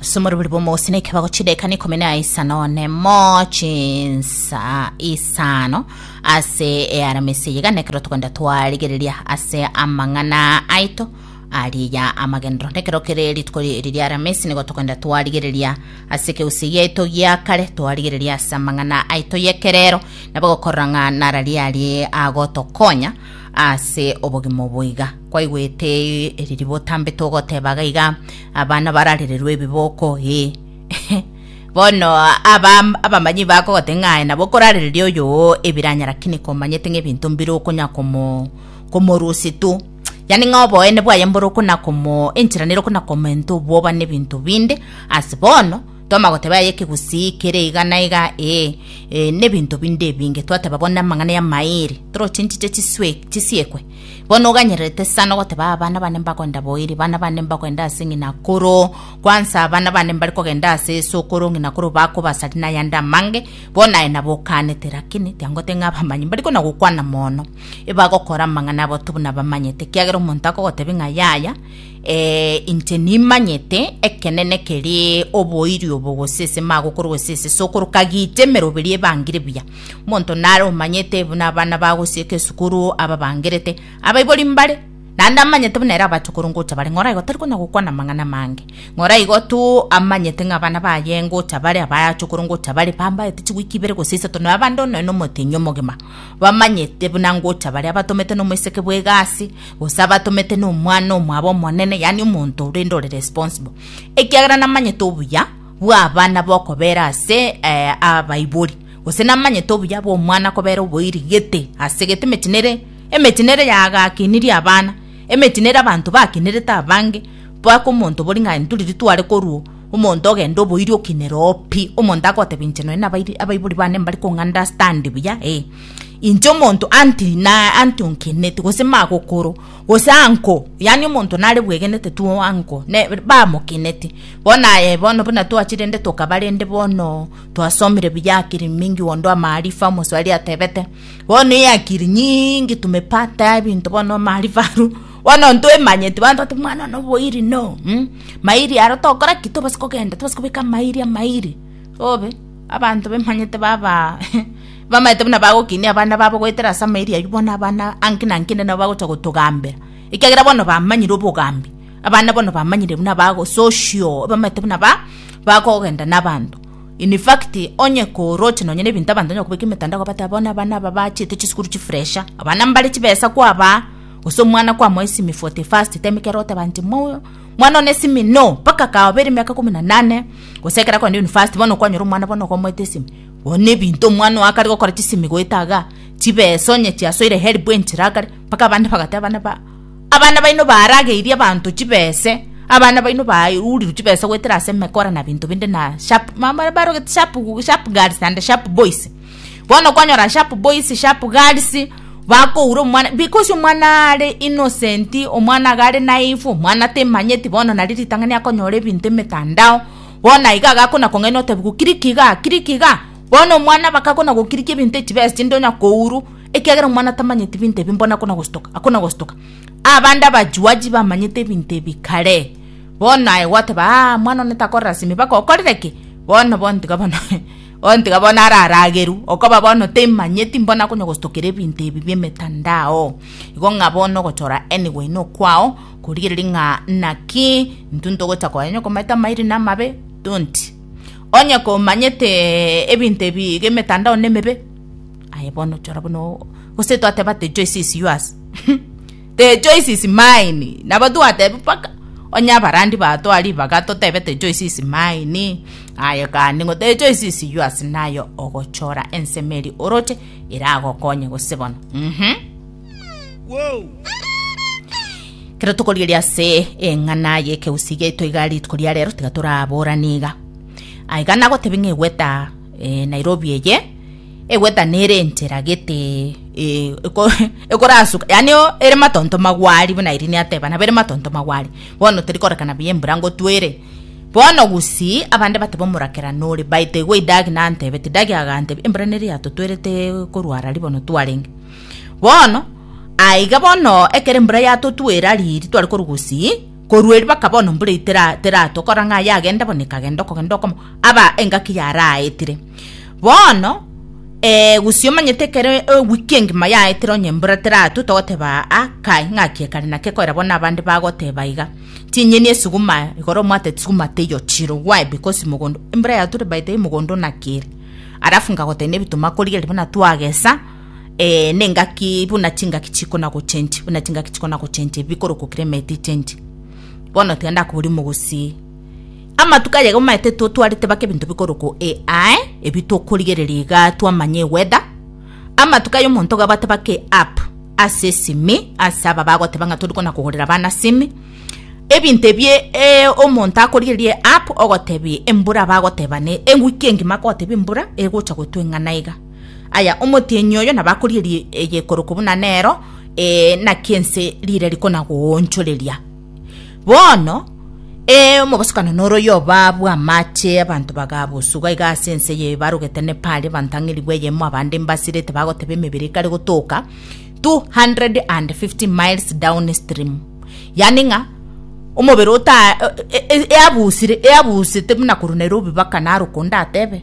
ase omorobori bw'omogosina ekebago chideka na ikomi na isano nemo chinsa isano ase earamisi eye gane ekero togenda twarigereria ase amang'ana aito ariya amagenero nekero kere rituko ri- eri riaramisi nigo togenda twarigereria ase ekegusii giaito gia kare twarigereria ase amang'ana aito y'ekerero nabo gokorora ng'a nara riarie agotokonya Ase obogima obo iga kwaigwete ee, eriri botambete ogoteba iga iga, abana bararererwe ebiboko ee. Bono aba abamanyi bakogote ng'aye nabo okorarereria oyo oo ebiranyara kini komanyete ng'ebinto mbire okonya komo komorusi tu yani ng'a oboene bwaye mbore okona komo enchera nere okona komenta obwoba n'ebinto binde ase bono Toma goteba aye ekegusii kere iga na iga, ee, ee, nebinto binde ebinge twateba bono namang'ana y'amairi, toroche nchiche chiswe- chisiekwe. Bono oganyererete sana ogoteba abana bane mbagoenda boiri, bana bane mbagoenda ase ng'ina akoro, kwansa abana bane mbare kogenda ase Yeso okoro, ng'ina akoro bakobasari na ayande amange, bono aye nabo okaanete, lakini tiangote ng'a abamanyi mbari kona gokwana mono, ebagokora amang'ana abo tobuna bamanyete, ekiagera omonto akogotebi ng'a yaya, Ee, inche nimanyete ekenene kere oboiri obo, gose ase magokoro, gose ase sokoro, kagicha emeroberi ebangire buya. Omonto nare omanyete buna abana bagosieka esukuru ababangerete, abaibori mbare, naende amanyete buna ere abachokoro ngocha bare, ng'ora igo tari konya gokwana amang'ana amange, ng'ora igo tu amanyete ng'a abana baye ngocha bare, abachokoro ngocha bare, bambaete chiwiki ibere gose isato, na abande onye nomotenyi omogima, bamanyete buna ngocha bare, abatomete nomoiseke bw'egasi. gose abatomete nomwana omwabo omonene, yaani omonto orende ore responsible, ekiagera namanyete obuya bw'abana bokobera ase eh, abaibori, gose namanyete obuya bw'omwana kobera oboiri gete ase gete emeti nere emeti nere yagakinirie abana emeti nere abanto bakinerete abange mpaka omonto bori ng'a nturi ritware koruo omonto ogende oboiri okinere oo pi omonto agotebi inche nonye nabairi abaibori bane mbari kong'understand buya eh. Inche omonto anti na anti onkeneti gose magokoro gose anko yaani omonto nare bwegenete tu anko ne bamokeneti bono aye bono buna twachire rende tokaba rende bono twasomire buya akiri mingi onde amaarifa omoswahili atebete bono eye akiri nyiingi tumepata ebinto bono amaarifa aru bono ntwemanyeti bono toteba omwana one oboiri no mh mairi aro tokora ki tobasa kogenda tobasa kobeka amairi amairi obe. Abanto bemanyete baba bamaete buna bagokinia abana babo goetera ase amairi ayio, bono abana anki na nki inde nabo bagocha gotogambera, ekiagera bono bamanyire obogambi. Abana bono bamanyire buna bago social, bamaete buna ba bakogenda na abanto. In fact, onye koroche nonye na ebinto abanto banyara kobeka emetandao kobateba bono abana aba bachiete chisukuru chifuresha, abana mbare chibesa kwabaa, gose omwana kwamoa esimi for the first time ekero oteba inche mwa. Mwana one esimi no mpaka akaoba ere miaka ikomi na nane gose ekero akogenda university bono kwanyora omwana bono okomoeta esimi oo nebinto omwana oo akare gokora chisimi goeta igaa chibesa onye chiasoire help enchera akare mpaka abande bagateba abana ba abana baino barageirie abanto chibese abana baino bairurirwe chibesa goetera ase emekora na binto binde na sharp mama barogete sharp sharp girls and sharp boys. bono kwanyora sharp boys sharp girls bakoura omwana because omwana are innocent omwana iga are naive omwana temanyeti bono nari ritang'ani akonyora ebinto emetandao bono aiga agakona kong'aina otebiwa kiriki iga kiriki iga bono omwana bakakona gokiriki ebinto echibesa chinde onya kouru ekiagera omwana tamanyeti binto ebi bono akona gostuka akona gostuka abande abajuaji bamanyete ebinto ebi kare bono aye gwateba aa omwana one takorora simi baka okorire ki bono bono tiga bono. Ontiga bono ararageru, okoba bono temanyeti mbona konya gostokera ebinto ebi biemetandao. Igo ng'a bono ogochora anyway nokwao korigereria ng'a naki intwe ntogocha koa onye okomaete amairi na amabe don't. Onye komanyete ebinto ebi iga emetandao nemebe aye bono chora buna gose twateba ati choice is yours. The choice is mine. Nabo twatebe mpaka onye abarandi batoa ribaga totebe the choice is mine. Aye kandi ng'o the choice is yours nayo ogochora ensemo eri oroche eragokonye gose bono. Mhm. Kero tokorigeria ase eng'ana y'ekeusi giaito iga rituko ria rero tiga toraborane iga. Aiga nagotebi ng'egweta eh, Nairobi eye egweta nere enchera gete eh, eko- ekorasuka yani o- ere matonto magwari buna irini ateba nabo ere matonto magwari bono teri korekana buya embura ngotwere bono gusi abande bateba omorakera nore baite igo idagi nantebete idagi agantebi embura neri yatotwerete korwara ribono twarenge bono aiga bono ekero embura yatotwera riri tware korwa gusii Korwa erio bakaba bono mbura eteratwa, kora ng'a aye agende bono ekagenda okogenda okomo aba engaki yaraetire. Bono ee, gose omanyete ekero ewiki engima yaetire onye mbura teratwe, togoteba aa kai ng'aki ekare naki ekoera bono abande bagoteba iga. Chinyeni esuguma igoro omwate suguma teiyo chiro why because mogondo embura yatwire by the way mogondo onakire. Alafu ngagotebia nebituma korigereria buna twagesa. eh, nengaki buna chingaki chikona gochenji buna chingaki chikona gochenji bikorokwa climate ichenji bono tiga ndakobori mogusii amatuko aye gomaete totwarete baka ebinto bikorokwa ai ebi tokorigereria iga twamanya eweda amatuko aye omonto gabate baka eapp ase esimi ase aba bagoteba ng'a torikona kogorera bana simi ebinto ebie eh, omonto akorigereria eapp ogotebia embura bagoteba ne ewiki engima kogotebia embura egocha gotwa eng'ana iga Aya omotienyi oyo nabakorierie egekoroko buna nero, ee, naki ense rire rikonagoonchoreria. Bono, ee, omobosokano noroyio obabwo amache, abanto bagabusuga iga ase ense eye barogete Nepali, abanto ang'e ribu eyemo, abande mbasirete bagoteba emebere ekare gotoka 250 miles down stream. Yaani ng'a omobere ota e- e- eabusire eabusete buna korwa Nairobi baka naro okonde atebe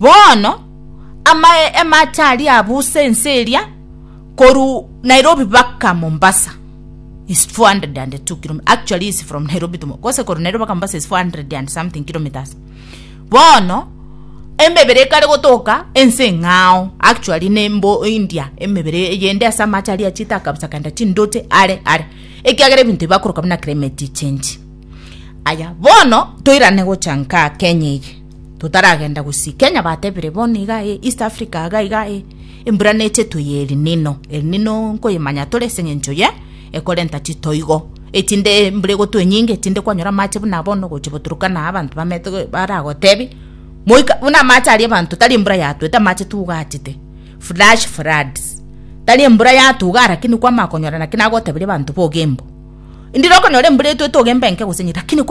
Bono amaye amache aria abusa ense eria koru Nairobi baka Mombasa is 402 kilometers. Actually is from Nairobi to Mo- gose koru Nairobi baka Mombasa is 400 and something kilometers. Bono emebere ekare gotoka ense ng'ao actually nembo India emebere yende ase amache aria achita akabusa kanda chindoche are are ekiagera ebinto ebi bakoroka buna climate change. Aya bono toirane gocha nkaa Kenya eye. Totaragenda gosii Kenya batebire bono iga e East Africa iga iga e embura neche toye El Nino El Nino nkoyemanya tore ase engencho ye ekorenta chitoigo etinde embura egotwe enyinge etinde kwanyora amache buna bono gochia goturukana abanto bamete baragotebi moika buna amache aria abanto tari embura yatwete amache tugachete flash floods tari embura yatugaa lakini kwamanya konyora naki nagotebirie abanto bogembo ndire okonyora embura etwete ogembe enke gose enye lakini kwa.